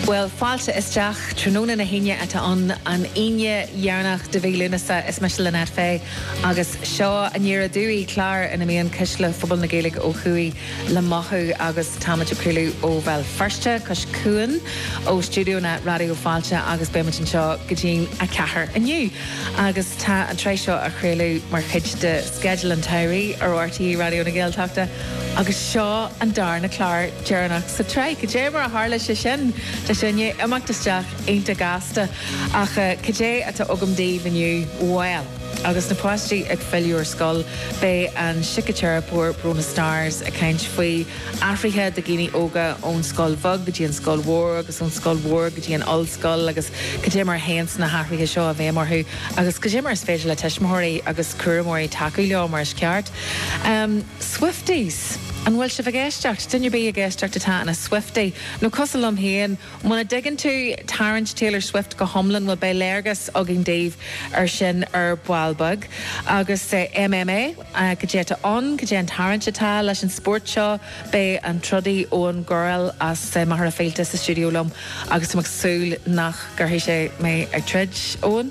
Bhuel, fáilte isteach. Tráthnóna na hAoine atá ann, an Aoine dheireanach de mhí Lúnasa. Is mise Lynette Fay agus seo Aniar Aduaidh, clár ina mbíonn cuisle phobal na Gaeilge ó thuaidh le mothú agus táimid ag craoladh ó Bhéal Feirste, cois cuain ó stiúideonna Raidió Fáilte agus beimid anseo go dtí'n 4 inniu. Agus tá an tsraith seo á chraoladh mar chuid de sceideal an tsamhraidh ar RTÉ Raidió na Gaeltachta agus seo an darna clár deireanach sa tsraith. Cad é mar a tharla sé sin? Tá sé i ndiaidh imeacht isteach iontach gasta, ach cad é atá agam daoibh inniu? Bhuel. Agus na páistí ag filleadh ar scoil, beidh an síciteiripeoir Bronagh Starrs ag caint faoi athruithe do dhaoine óga ón scoil bheag go dtí an scoil mhór agus ón scoil mhór go dtí an ollscoil agus cad é mar a théanns na hathruithe seo i bhfeidhm orthu agus cad é mar is féidir le tuismitheoirí agus cúramóirí tacú leo mar is ceart. Swifties! An bhfuil sibh ag éisteacht? Duine ar bith ag éisteacht atá ina Swiftie, nó cosúil liom féin, muna dtuigeann tú tarraingt Taylor Swift go hiomlán, bhuel, beidh léargas againn daoibh ar sin ar ball beag. Agus MMA? Cad é atá ann? Cad é an tarraingt atá leis an spórt seo? Beidh an trodaí Eoghan Gurrell as Machaire Fíolta sa stiúideo liom, agus tá mé ag súil nach gcuirfidh sé mé ag troid. Eoghan?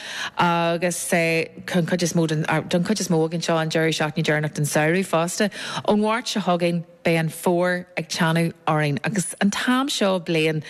agus don chuid is mó don chuid is mó againn seo an deireadh seachtaine deireanach den samhradh fosta. Ón Mháirt seo chugainn beidh an fómhar ag teannadh orainn agus an t-am seo bliana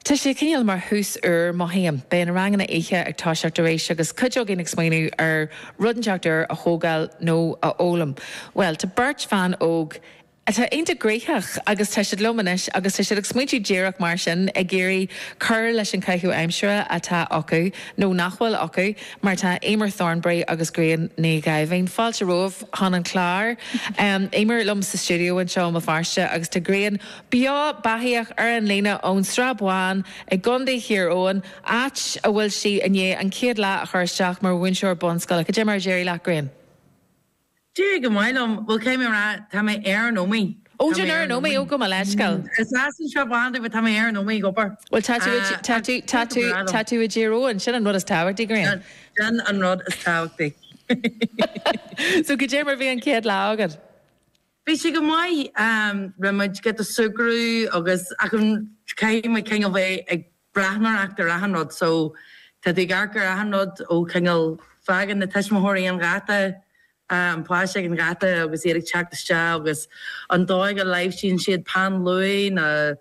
tá sé cineál mar thús úr, mothaím. Beidh na ranganna oíche ag toiseacht arís agus cuid againn ag smaointiú ar rud inteacht úr a thógáil nó a fhoghlaim. Bhuel, tá beirt bhan óg atá iontach gnoitheach agus tá siad liom anois agus tá siad ag smaointiú díreach mar sin, ag iarraidh cur leis an chaitheamh aimsire atá acu, nó nach bhfuil acu, mar tá Emer Thornbury agus Grian Ní Dháimhín, fáilte romhaibh chun an chláir, Emer liom sa stiúideo anseo i mBéal Feirste agus tá Grian beo beathaíoch ar an líne ón Srath Bán i gContae Thír Eoghain, áit a bhfuil sí i ndiaidh an chéad lá a chur isteach mar mhúinteoir bunscoile. Cad é mar a d'éirigh leat, Grian? D'éirigh go maith liom. Bhuel, caithfidh mé a rá, tá mé ar an Ómaigh. Ó, tá tú ar an Ómaigh, ó, gabh mo leithscéal. Is as an tSrath Bán dom, but tá mé ar an Ómaigh, go bar. Bhuel, tá tú, tá tú, tá tú, tá tú i dTír Eoghain, sin an rud is tábhachtaí, Grian. Sin an rud is tábhachtaí. So, cad é mar a bhí an chéad lá agat. Bhí sé go maith, bhí muid, just ag súgradh agus, ach an, caithfidh muid, kind of, é ag breathnóireacht ar achan rud so tá tú ag amharc ar achan rud ó cineál fágann na tuismitheoirí an gheata an páiste ag an gheata agus iad ag teacht isteach agus an dóigh a láimhsíonn siad peann luaidhe na